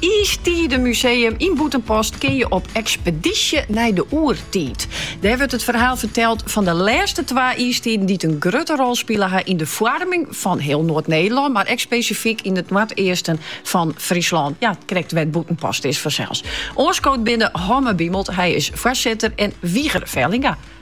Iistiidemuseum yn Bûtenpost kin je op ekspedysje nei de oertiid. Dêr wurdt it ferhaal ferteld fan de lêste twa iistiden dy't in grutte rol spile ha yn de foarming fan hiel Noard-Nederlân, mar ek spesifyk yn it noardeasten fan Fryslân. Ja, krekt wêr't Bûtenpost is fansels. Oanskood binne Homme Biemelt, hy is foarsitter, en Wiger Vellinga,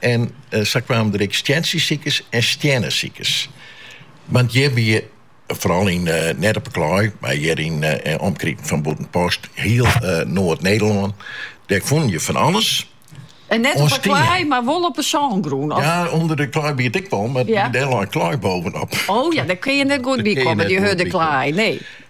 En sa kwamen der ek stientsjesikers en stiennesikers. Want hjir wie, foaral yn, net op 'e klaai, mar hjir yn omkriten fan Bûtenpost, hiel Noard-Nederlân, dêr fûnen je fan alles. En net op 'e klaai, mar wol op 'e sângrûn? Ja, ûnder de klaai wie it ek wol, mar dêr lei klaai bovenop. O ja, dêr kin je net goed by kommen, dy hurde klaai, nee.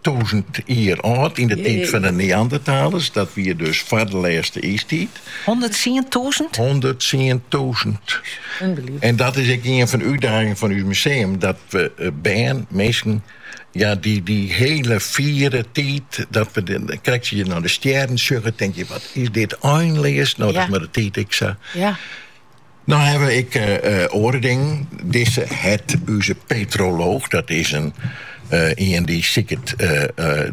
tûzen jier âld yn de tiid fan de Neandertalers. Dat wie dus foar de lêste iistiid. Hûnderttsientûzen? Hûnderttsientûzen. En dat is ek ien fan de útdagingen fan ús museum, dat we bern, minsken, ja, dy dy hiele fiere tiid, dat we dan krekt as je nei de stjerren sjogge, tink je, wat is dit einleas? No, dat mei de tiid ek sa. No hawwe ek oare dingen. Dizze het ús petrolooch, dat is in ien dy't siket,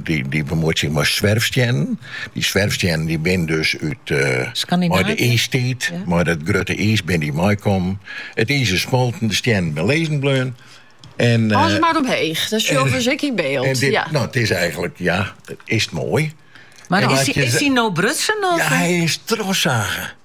dy't bemuoit sich mei swerfstiennen. Dy swerfstiennen dy binne dus út mei de iistiid, mei dat grutte iis binne dy meikommen. It iis is smolten, de stiennen binne lizzen bleaun. Alles mar omheech, dat sjogge we dus ek yn byld. No, it is eigentlik, ja, it is moai. Mar is hy no brutsen? Ja, hy is trochsagen.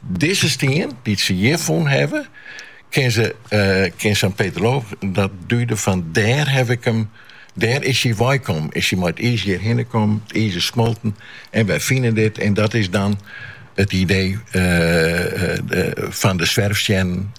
Dizze stien, dy't se hjir fûn hawwe, kin sa'n petrolooch dat duide fan dêr haw ik him, dêr is hy weikommen, is hy mei it iis hjirhinne kommen, it iis is smolten en wy fine dit, en dat is dan it idee fan de swerfstiennen.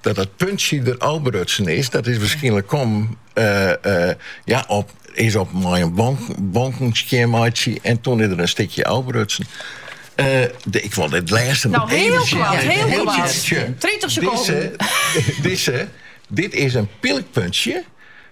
Dat dat puntsje der ôfbrutsen is, dat is waarskynlik kommen ja, op, is op mei in bonken skjin meitsje en toen is der in stikje ôfbrutsen. Uh, de, ik wol it lêste no, hiel koart, hiel koart. 30 sekonden. Dizze, dizze, dit is in pylkpuntsje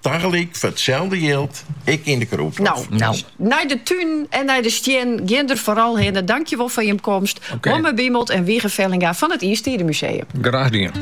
Tagelyk foar itselde jild ek yn De Krûdhôf. Nou, nou. Nei de tún en nei de stiennen, gean der foaral hinne. Dankjewol foar jim komst. Homme Biemelt en Wiger Vellinga fan it Iistiidemuseum. Graach dien.